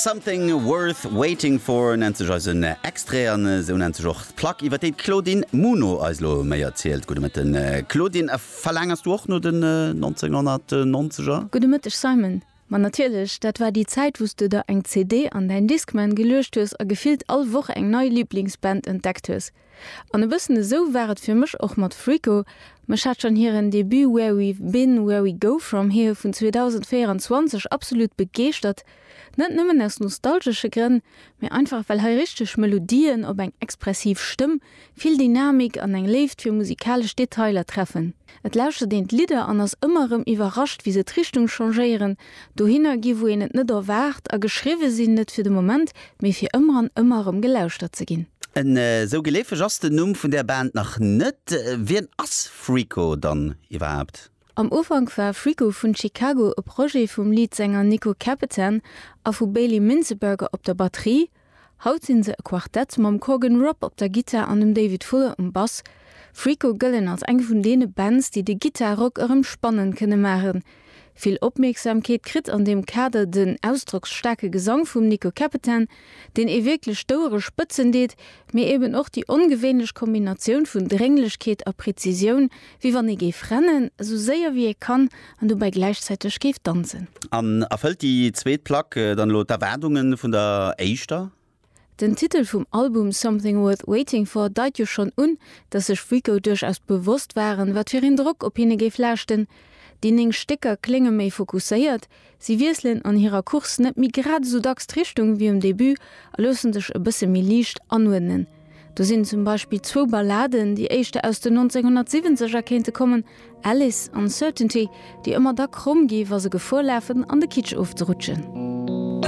Something Worth Waiting For nennt sech eisen Extrait an esou nennt sech och d'Plack iwwer déi d'Claudine Muno eis elo méi erzielt. Gudde Mëtten Claudine, a verlaangers du och no den 1990er? Gudde Mëtteg Simon, ma natierlech, dat war déi Zäit wou's du der eng CD an däin Discman geluecht hues a gefillt all Woch eng nei Liblingsband entdeckt hues. An e bëssen esou war et fir mech och mat Frico, mech hat schonn hiren Debut Where We've Been, Where We Go From Here vun 2024 absolut begeeschtert, net nëmmen aus nostalgesche Grënn, mee einfach well hei richteg Melodien op eng expressiv Stëmm, vill Dynamik an eng Léift fir musikalesch Detailer treffen. Et lauschtert een d'Lidder an ass ëmmer erëm iwwerrascht, wéi se d'Richtung changéieren, Dohinner gi wou een et net erwaart, a geschriwwe sinn, net fir de Moment, mee fir ëmmer an ëmmer erëm gelauschtert ze ginn. Esou geleefeg ass den Numm vun där Band nach net. Wien ass Freako dann iwwerhaapt? Am Ufank war Freako vun Chicago e Projet vum Leadsänger Nico Capitan a vu Bailey Minzeberger op der Batterie, Haut sinn se e Quartett mam Corgan Robb op der Gittar an dem David Fuller um Bass. Freako gëllen als eng vun deene Bands, déi de Gittar-Rock erëm spannend kënne maachen. Vill Opmierksamkeet kritt an deem Kader den ausdrocksstaarke Gesang vum Nico Capetan, deen ee wierklech d'Ouere spëtzen deet, mee eben och déi ongewéinlech Kombinatioun vun Drénglechkeet a Prezisioun, Wéi wann ee géif rennen, esou séier wéi ee kann, an dobäi gläichzäiteg géif danzen. An erfëllt déi zweet Plack dann elo d'Erwaardunge vun der éischter? Den Titel vum Album Something Worth Waiting For deit jo schonn un, datt sech Rico duerchaus bewosst waren, wat fir een Drock op hinne géif laaschten. Déi néng Stécker klénge méi fokusséiert, Si wiesselen an hirer Course net méi grad esou dacks d'Richtung wéi um Debut a loosse sech e bësse méi liicht anuerdnen. Do sinn zum Beispill zwou Balladen, déi éischter aus den 1970 er kéinte kommen, Alice an Certainty, déi ëmmer da kromm gi wa se Gefor lafen an de Kitsch ofzerutschen.